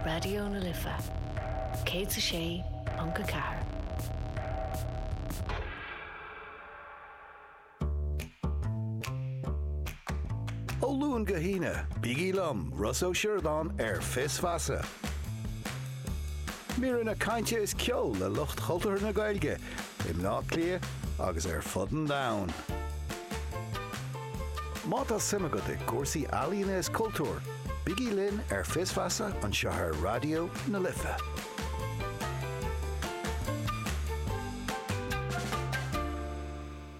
Raidió na Life 106.4. Ó Luan go hAoine, bígí liom, Ross Ó Sioradáin, ar Fios Feasa. Míreanna cainte is ceol le lucht chultúrtha na Gaeilge i mBleá Cliath agus ar fud an domhain. Má tá suim agat i gcúrsaí ealaíne is cultúir, bígí linn ar Fios Feasa anseo ar Raidió na Life.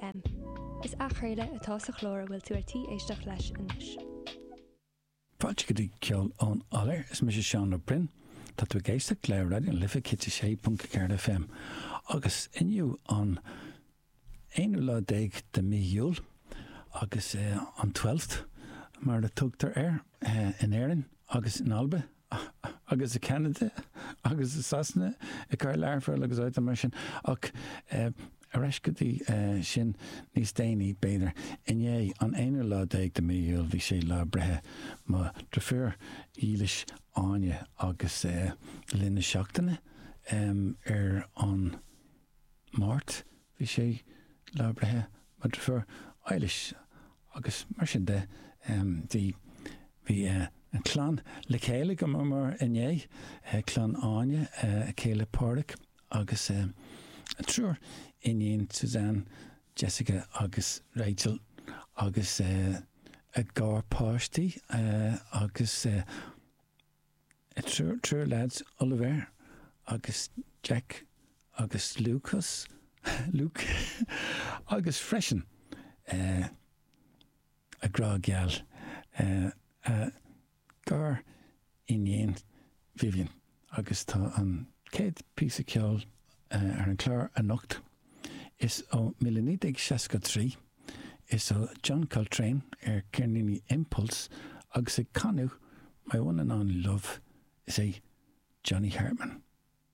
FM. Is athchraoladh atá sa chlár a bhfuil tú ar tí éisteacht leis anois. Fáilte go dtí Ceol ón Iolair, is mise Seán Ó Broin. Tá tú ag éisteacht le Raidió na Life 106.4 FM agus inniu an aonú lá déag de mí Iúil agus an Twelfth mar a tugtar air in Éirinn agus in Alba. agus i Ceanada agus i Sasana i gcathair Learphoill agus áiteanna mar sin ach ar ais go dtí sin níos déanaí b'fhéidir. Inné, an aonú lá déag de mí Iúil, bhí sé lá breithe mo dhrifiúr dhílis Áine agus le linn na seachtaine ar an. Máirt, Bhí sé lá breithe mo dhrifiúr Eilish agus mar sin de bhí bhí an clann le chéile go mar mar inné clann Áine a céile Pádhraic agus a triúr iníon Suzanne, Jessica agus Rachel agus a gcuid páistí agus a triúr leaids, Oliver agus Jack agus Lucas, Luke, agus freisin a grá geal, a gariníon, Vivian, agus tá an chéad phíosa ceoil ar an gclár anocht Is ó Míle Naoi Déag Seasca Trí, is ó John Coltrane ar cheirníní Impulse agus ag canadh My One and Only Love, is é Johnny Hartman.